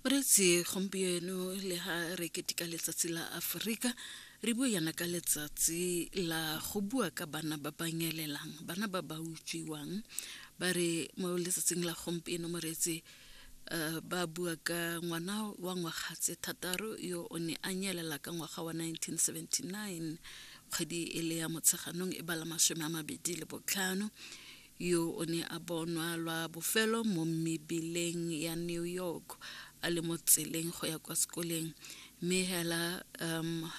moretsi gompieno le ga re ketika letsatsi la aforika re bue yana ka letsatsi la go bua ka bana ba ba nyelelang bana ba ba utswiwang ba re mo letsatsing la gompieno moretsi Eh, ba bua ka ngwana wa ngwaga tse thataro yo o ne a nyelela ka ngwaga wa 1979 kgwedi e le ya motsheganong e bala masome a mabedi le botlhano yo o ne a bonwa lwa bofelo mo mebeleng ya New York a le mo tseleng go ya kwa sekoleng mme hela um,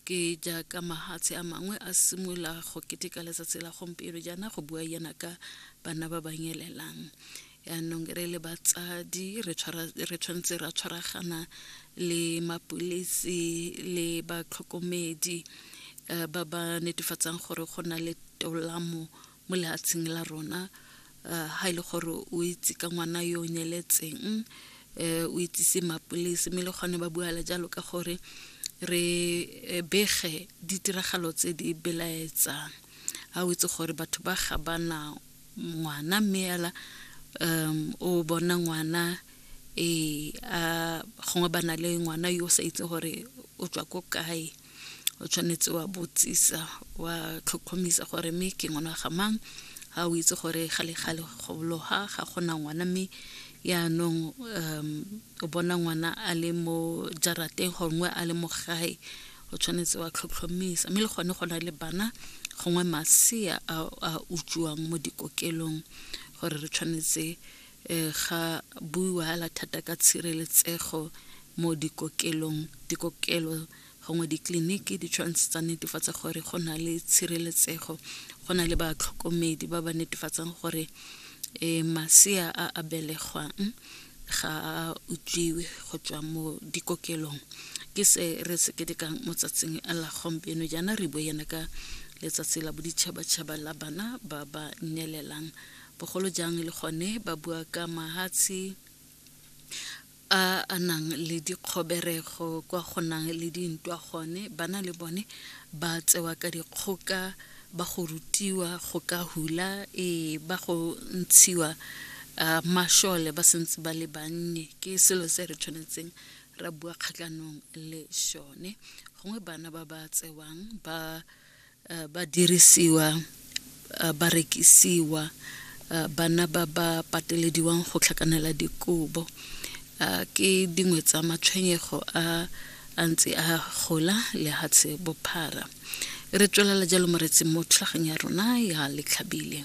ke jaaka mahatshe a mangwe a simolola go keteka letsatsi la gompieno jaana go bua yana ka bana ba ba nyelelang yaanong re le batsadi re tshwanetse ra tshwaragana le mapulisi le batlhokomedi eh, ba ba netefatsang gore go na le tolamo mo lehatsheng la rona uh, ha ile e gore o itse ka ngwana yo o nyeletseng um eh, o itsise mapolese mme le kgone ba buala jalo ka gore re eh, bege ditiragalo tse di belaetsang ha o itse gore batho ba ga bana ngwana mme ela um o bona ngwana e a gongwe ba na le ngwana yo o sa itse gore o tswa ko kae o tshwanetse wa botsisa wa tlhotlhomisa gore mme ke ngwana ga mang ga o itse gore ga le gale gobologa ga gona ngwana mme yaanong um o bona ngwana a le mo jarateng gongwe a le mo gae o tshwanetse wa tlhotlhomisa mme le gone go na le bana gongwe masea a utswiwang mo dikokelong gore re tshwanetse E, ga buiwa hela thata ka tshireletsego mo dikokelong dikokelo gongwe ditleliniki di tshwanetse tsa netefatsa gore go na le tshireletsego go na le batlhokomedi ba ba netefatsang gore e, masea a a belegwang ga a utswiwe go tswa mo dikokelong ke se re se ketekang mo tsatsing la gompieno jaana re bo yana ka letsatsi la boditšhabatšhaba la bana ba ba nyelelang bogolo jang le gone ba bua ka mahatshe a a nang le dikgoberego kwa go nang le dintwa gone bana le bone ba tsewa ka dikgoka ba go rutiwa go ka hula ee ba go ntshiwa uh, mashole ba sentse ba le bannye ke selo se re tshwanetseng ra bua kgatlhanong le sone gongwe bana ba ba tsewang ba uh, ba dirisiwa uh, ba rekisiwa uh, bana ba ba patelediwang go tlhakanela dikobo uh, ke dingwe tsa matshwenyego a a ntse a gola lehatshe bophara re tswelela jalo moretseng mo tlhageng ya rona ya letlhabile